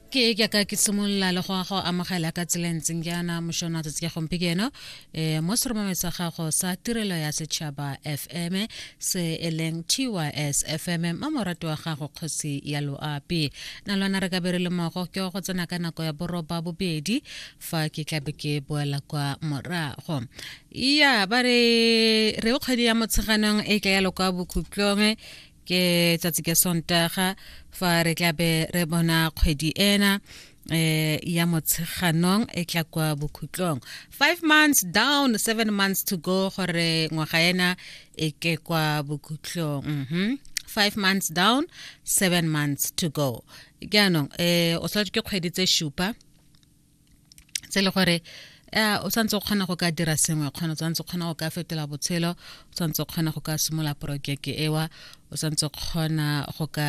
ke ke ka ke simolola le go a go amogela ka tsela e ntseng jaana mošona tsatsi ya gompieno um mo seromameng sa gago sa tirelo ya setšhaba fm se e leng tys fm ma morato wa gago kgosi ya loapi na lwana re ka be re le mogo ke go tsena ka nako ya boroba bobedi fa ke tlabe ke boela kwa morago ya ba re re kgwedi ya motsheganong e tla ya lokwa bokhutlong ke tsatsi ke sontaga fa re tla be re bona kgwedi ena eh ya motsheganong e tla kwa bokhutlong 5 months down 7 months to go gore ngwaga ena e ke kwa bokhutlong mhm 5 months down 7 months to go jaanong eh o tshwanetse ke kgwedi tse shupa tse le gore eh, o tshwanetse o kgona go ka dira sengwe kgona o tshwanetse o kgona go ka fetola botshelo o tshwanetse o kgona go ka simola porojeke ewa o tshwanetse o kgona go ka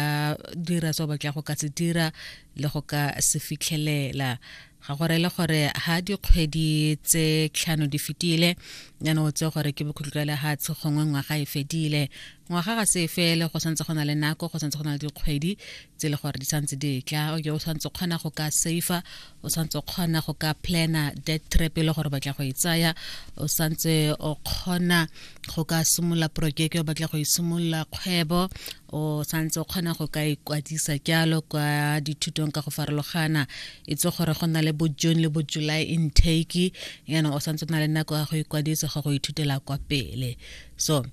dira se o batla go ka se dira le go ka se fitlhelela ga gore le gore ha dikgwedi tse tlhano di fetile yana o tse gore ke bokhutlo le ha tshe gongwe ngwaga e fedile ngwaga ga se fele go santse go na le nako go santse go na le dikgwedi tse le gore di santse di tla o ke o santse kgona go ka safe o santse kgona go ka plana dead trap e le gore batla go e tsaya o santse o kgona go ka simolola projeke o batla go e simolola kgwebo o santse o kgona go ka ikwadisa jalo kwa dithutong ka go farologana e tse gore go na le bo june le bo july intake yana o santse o na le nako ya go ikwadisa go go ithutela kwa pele so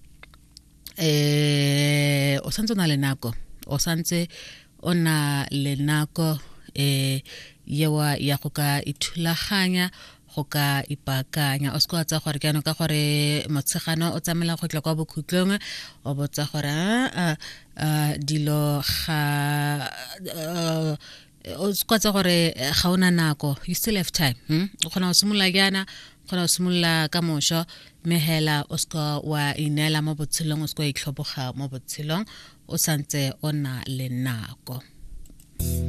eh o santse o na le nako o santse o na le nako eh yewa ya go ka ithulaganya go ka ipaakanya o se kwa tsa gore jaanong ka gore motshegano o tsamela go tla kwa bokhutlong o botsa gore a dilo ga o kgotsa gore eh, ga ona nako you still have time hmm? o kgona go simolola jaana o kgona go simolola ka mošwa mme hela o seka wa ineela mo botshelong o seka wa itlhoboga mo botshelong o santse o na le nako